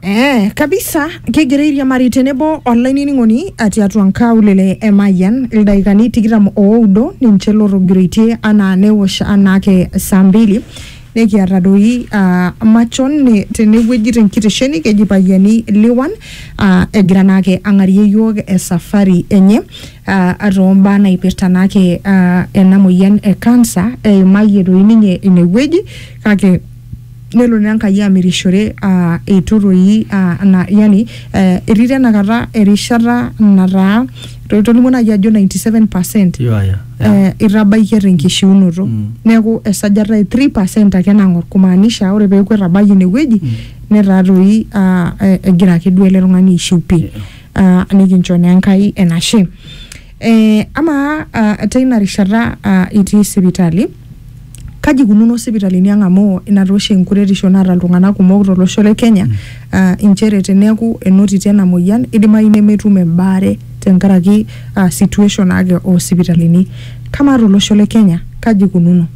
Eh, kabisa kegira airiamari tenebo olainining'oni atii atua nkaulele e Mayian ildaikani tikitam oudo ninche lotogiroitie anaa newosh anaake saa mbili nekiata doi ah, machon ne- tenewueji tenkitesheni keji Payiani Liwan ah, egira naake ang'arie yiok esafari enye ah, atoombaa naipirta naake ah, ena moyian e cancer eimayie doi ninye inewueji kake nelo naa Enkai amirishore uh, eitu toi uh, na, yani eh, etii tenakata erishata nataa to- tolimu naaji ajo 97 percent Yeah, yeah, yeah. eh, itabaikia tenkishiunoto Mm. neeku esajata e 3 percent ake nang'or kumaanisha ore peeku etabayie inewueji Mm. netaa toi ah, eh, egira ake duo ele tung'ani aishiu pii Yeah. Ah, nikincho naa enkai enashe Eh, amaa uh, teina rishata uh, itii sipitali kaji ikununo sipitalini ang amu ina taa oshi enkuretisho naata iltung'anak kumok tolosho le Kenya mm. uh, inchere teneeku enotiti ena moyian idimayu nemetum embaare tenkaraki uh, situation ake oo sipitalini kamaa tolosho le Kenya kaji ikununo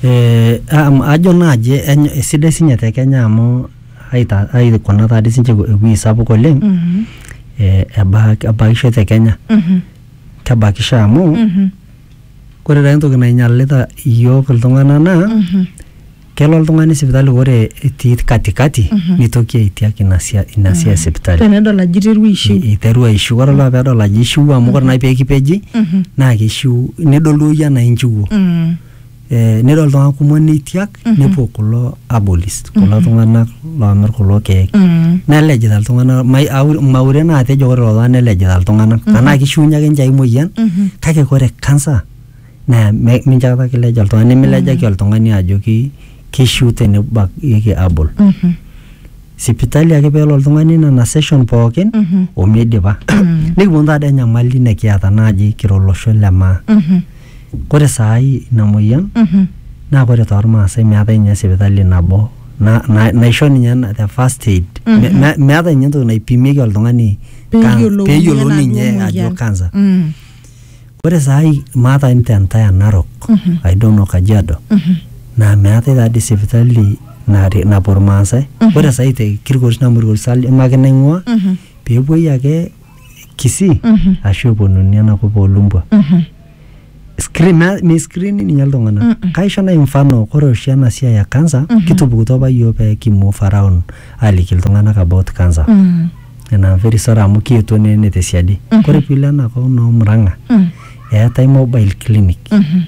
Eh, am- ajo naaji eny- esidai sinye te Kenya amu aita- aikuna taa dii sinche ewueji sapuk oleng Mhm. eh, eba- ebakisho te kenya Mhm. kebakisho amu Mhm. ore taa entoki nainyalita iyiook iltung'anak naa Mhm. kelo oltung'ani sipitali ore etii katikati Mhm. nitoki aitiak ina sia- ina siai sipitali tenedol ajo iterua aishiu I- iteru aishiu ore olapa pedol ajo ishiu amu ore nai pekipeji Mhm. naa kishiu nidol duo iyie anaa inchiwuo Mm. Eh, nedol iltung'anak kumok neitiak nepuo kulo abolis kulo tung'anak loomir kulo keek Mm. nelejita iltung'anak mai- au- maure naa atejo ore lolo nelejita iltung'anak tenaa kishiunye ake ninche ai moyian Mhm. kake ore kansa naa me- mincho apa kileja oltung'ani nimilejaki oltung'ani ajoki kishiu tenibakieki abol Mhm. sipitali ake peelo oltung'ani nena session pookin omeidipa nikiponu taadi enyamali nikiata naaji kira olosho le maa kore saai ina moyian naa kore tormaasai meetae ninye sipitali nabo na- na- naisho ninye na- the first aid Me- me- meetae ninye entoki naipimieki oltung'ani kan- Peyiolouni peyiolouni enaduo ninye ajo moyian. cancer Mm. Ore saai maata te entire Narok, I don't know Kajiado, naa meetae taa dii sipitali nare- napuo Irmaasai. Ore saai te Kilgoris amu Kilgoris aim ake naing'ua, peepuoi ake Kisii ashu eponunui enakop oo Lumbwa. Screen naa meiscreeni ninye iltung'anak. Kaisho naai mfano ore oshi ena siai e cancer kitupukutuo apa iyiook pee ki move around aaliki iltung'anak about cancer. nena very sad amu kietuo ne- ne tesiadi kore piilo ena kop noo murang'a Mm. eetae mobile clinic Mhm.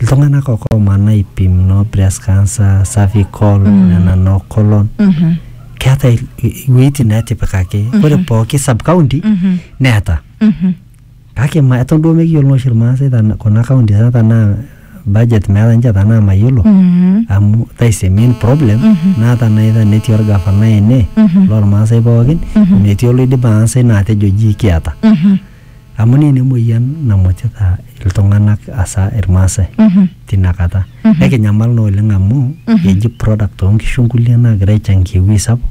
iltung'anak ake oomana aipim noo breast cancer cervical nena noo colon Mhm. keeta il- i- iwueitin naatipikaki ore pooki sub county Mhm. neeta Mhm. Kake ma eton duo mekiyiolo naa oshi Irmaasai tana- kuna counties ang tanaa budget meeta ninche tanaa mayiolo amu that is the main problem naa tanaa either netii orgafanai ene lormaasai pookin metii oloidim aasa ina atejo ji kiata amu naa ina emoyian namutita iltung'anak asa irmaasai tina kata nekinyamal naa oleng amu eji product onkishu nkulie nagira aichangia ewuei sapuk.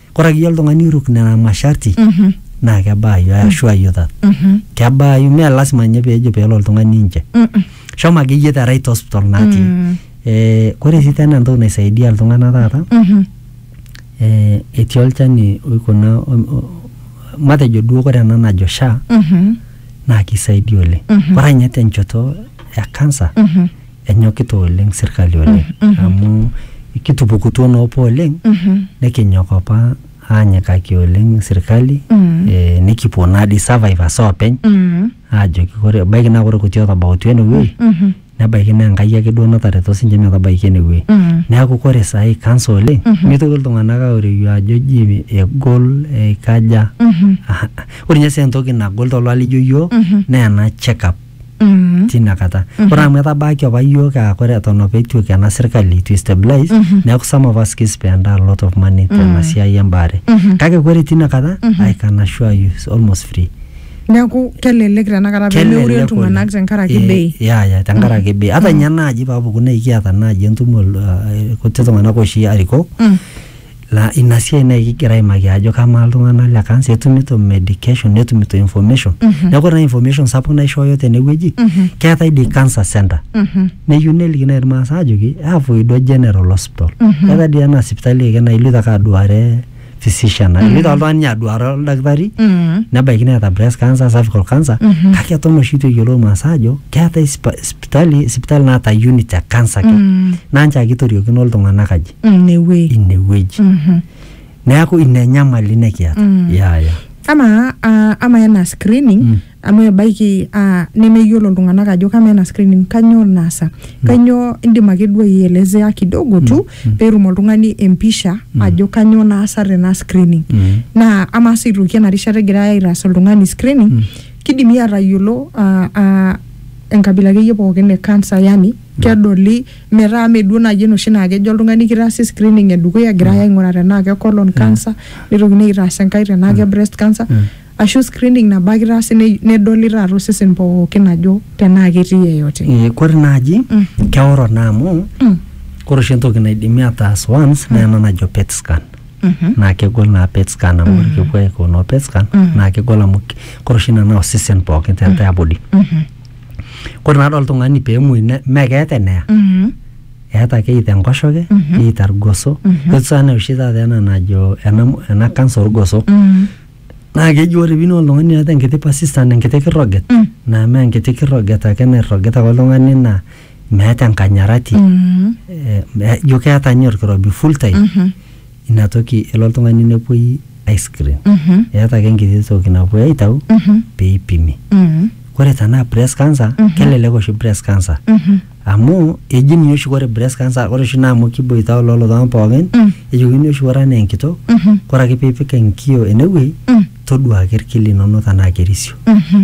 Kore akeyie oltung'ani oiruk nena masharti Mhm. naa kebaayu, I assure you that. Mhm. Kebaayu, mee lasima ninye peejo peelo oltung'ani nje. Mm. Shomo akeyie the right hospital natii. Mm. Eh, kore sii tena entoki naisaidia iltung'anak taata, Mhm. eh, etii olchani oikuna o- o- matejo duo kore ena najo SHA Mhm. naa kisaidia oleng. Mhm. Kore ninye tenchoto e kansa Mhm. enyokita oleng sirkali oleng amu kitupukutuo naa opa oleng nikinyok opa aanyikaki oleng sirkali eh, nikipuo naa dii survivors oopeny aajoki ore ebaiki naa ore kuti otabautua enewueji nebaiki naa Enkai ake duo natareto sinche metabaiki enewueji neeku ore saai kansa oleng mitoki iltung'anak aoreyu ajo ji egol eikaja ore ninye sii entoki nagol toltung'anak lijo iyiok naa ena check up Mhm. tina kata ore amu etabaaki apa yiok aa kore eton apa etu iko ena sirkali itu stabilize neeku some of us kispend a lot of money tena siai embaare kake kore tina kata I can assure you it's almost free neeku kelelek tenakata pemeure Kelelek iltung'anak oleng. tenkaraki Eh, bei ya ya tenkaraki bei hata nye naaji paapuku naa ikiata naaji entumo uh, kuti tung'anak oshi arikok Laa ina siai naaji kigira aimaki ajo kamaa iltung'anak le kansa etumito medication netumito information neeku ore naa information sapuk naishooyo tenewueji keetae dii cancer center neyieu neliki naaji irmaasai ajoki avoido general hospital keetae dii ena sipitali ake naa iloito ake aduare physician ake iloito ake oltung'ani ninye aduare oldakitari nebaiki neeta breast cancer cervical cancer kake eton oshi itu eyiolou irmaasai aajo keetae sipa- sipitali sipitali naata unit e cancer ake naa nchoo ake itoriokino iltung'anak aji. Mm, newuei inewueji Mhm. neeku ina enyamali nikiata Mm. ya ya ama ah, ama ena screening Mm. amu ebaiki ah, nemeyiolo iltung'anak ajo kama ena screening kanyoo naasa kanyoo indim ake duo aielezea kidogo tu peetum oltung'ani empisha ajo kanyoo naasa tena screening Mm. naa ama sii aitoki ena rishata egirai aitaas oltung'ani screening kidimi aatayiolo ah, ah, enkabila akeyie pookin e cancer yani kedoli metaa mee duo naaji enoshi naa kejo oltung'ani kitaasi screening edukuya egirai aing'uraa tenaa ke colon cancer nitokini aitaas enkae tenaa ke breast cancer ashu screening nabo ake itaasi ne- nedoli taata osesen pookin ajo tenaa ketii yeyote Eh, kore naaji keoro naa amu Mm. kore oshi entoki naidimi ataas once naa ena najo pet scan Mhm. naa kegol naa pet scan amu ore kepuo aiko noo pet scan naa kegol amu k- kore oshi ina naa osesen pookin te entire body Mhm. kore naa toltung'ani peemuoi ne- mee keeta eneya Mhm. eeta ake either enkoshoke Mhm. either irgoso Mhm. etu sana oshi taata ena najo ena mo- ena kansa orgoso Mhm. naa keji ore piini oltung'ani oota enkiti persistent enkiti kirroget Mm. naa mee enkiti kirroget ake nairrogita ake oltung'ani naa meeta enkanyarati Mhm. eh, me- ijo keeta ninye orkirobi full time Mhm. ina toki elo oltung'ani nepuoi aiscreen Mhm. eeta ake enkiti toki napuoi aitau Mhm. pee eipimi Mhm. ore tenaa breast cancer Mhm. kelelek oshi breast cancer Mhm. amu eji ninye oshi ore breast cancer ore oshi naa amu kiboitao lelo tung'anak pookin Mm. ejokini oshi ore anaa enkitok Mhm. ore ake piipik enkio enewueji Mm. toduaa ake irki linono tenaa kerisio Mhm.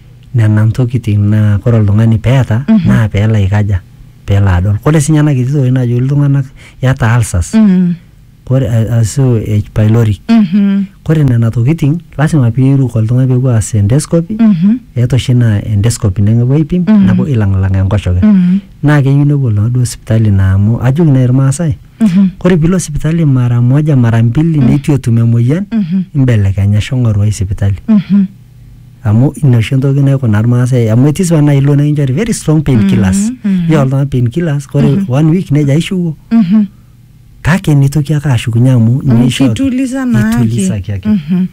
Nena ntokitin naa kore oltung'ani peeta naa peelo aikaja peelo adol. Kore sii ninye ena kiti toki najoki iltung'anak iyata ulcers Mm. kore ashu H pylori. Mhm. Kore nena tokitin lazima piiruk oltung'ani peepuo aas endoscopy Mhm. eeta oshi naa endoscopy nepuo aipim Mhm. nepuo ailang'lang enkoshoke. Mhm. Naa keyieu nepuo iltung'anak duo sipitali naa amu ajoki nai irmaasai Mhm. kore piilo sipitali mara moja mara mbili neitu etum emoyian Mhm. imbelekenya shomo ng'oru ai sipitali. Mhm. amu ina oshi entoki naikuna irmaasai amu etii sipa naaji ilo nikinchori very strong pain killers Mhm, mhm. nishori oltung'ani pain killers kore one week nejo aishiwuo Mhm. kake nitoki ake ashukunye amu ninye Amu ishoo- kituliza naake. kitulisaki ake Mhm.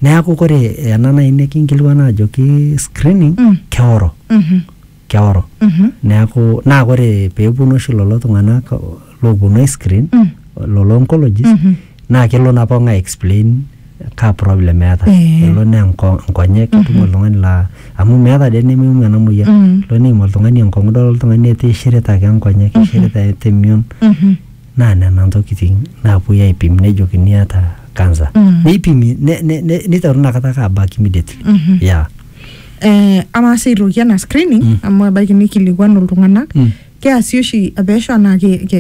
neeku kore ena naaji nikinkilikuan ajoki screening Mm. keoro Mhm. keoro neaku naa kore peeponu oshi lolo tung'anak looponu aiscreen lolo oncologists naa kelo naa pookin aexplain kaa problem eata Eh. elo naa enko- nkonyek itum oltung'ani laa amu meata dee nemeimu ena moyian Mm. elo neim oltung'ani enkong'u idol oltung'ani etaa eishirita ake nkonyek eishirita eata emion naa nena ntokitin naapuoi aipim nejokini iata cancer Mm. neipimi ne- ne- ne- neitaru inakata ake abak immediately yeah eh, amaa sii aitoki ena screening Mm. amu ebaiki nikilikuanu iltung'anak Mm. keasi oshi pesho anaa ke, ke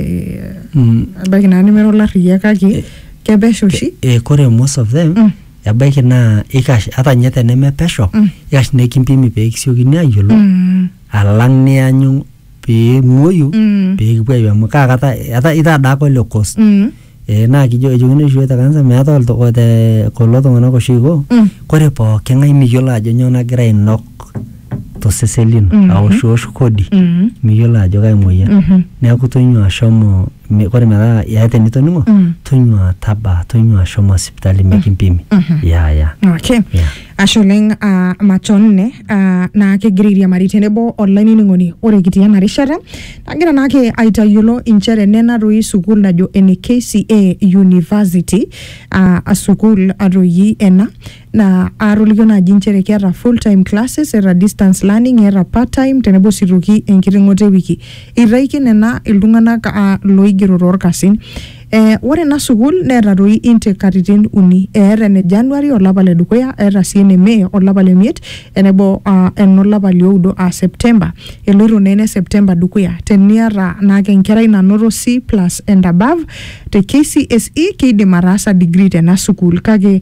Mm. ebaiki naa nemera olarriyiak kake Eh. kepesho oshi Eh, kore most of them Mm. ebaiki naa ikash ata ninye teneme pesho Mm. ikash nekimpimi pee kisiokini ayiolou Mm. alang nianyu pee imuoyu Mm. pee kipuo ayiu amu kaa kata eta- itaa daa apa ole cost Mm. Eh, naa kijo ejokini oshi iyiok te kanisa meetae oltu- te kulo tung'anak oshi oiko Mm. kore pooki ng'ae miyiolo ajo nyoo nagira ainok tosesen lino Mhm. aoshiosh kodi Mm. miyiolo ajo kai moyian Mhm. neeku tonyua ashomo mi- kore metaa eata enitoning'o Mm. tonyua taba tonyua shomo sipitali mikimpimi ya ya Okay. Yeah. Ashe oleng uh, machon ne uh, naa kegira airiamari tenebo olainining'oni ore kitii ena rishata nagira naake aitayiolo inchere nena doi sukuul najo ene KCA University uh, sukuul atoi ena naa aatolikio naaji inchere keeta full time classes eeta distance learning eeta part time tenebo sii toki enkiting'oto ewiki eitaiki nena iltung'anak aa looigero toorkasin Eh, ore ena sukuul neeta toi intake katitin uni eeta ene January olapa le dukuya eeta sii ene May olapa le miet enebo ah, enolapa lioudo aa September eloito naa ene September dukuya teniata naake enkerai nanoto C plus and above te KCSE keidim ataasa degree tena sukuul kake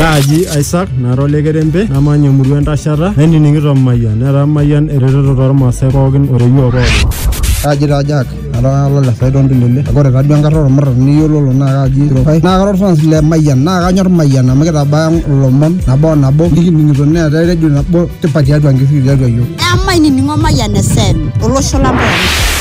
Kaaji Isaac nara ole kerembe namanya emurua entashata nainining'ito Mayian netaa Mayian eretoto tormaasai pookin o reyioo pookin. Kaaji taa Jack ara lole Saido Ndulele kake ore taaduo enkata ormuran niyiololo naa kaaji Sirokai naa kara orfans le Mayian naa kanyor Mayian amu kitabaya ilomon nabo o nabo nikining'ito neetae redio nabo tipat tiatua nkishui tiatua iyiok. Emainining'o Mayian FM olosho lang pookin.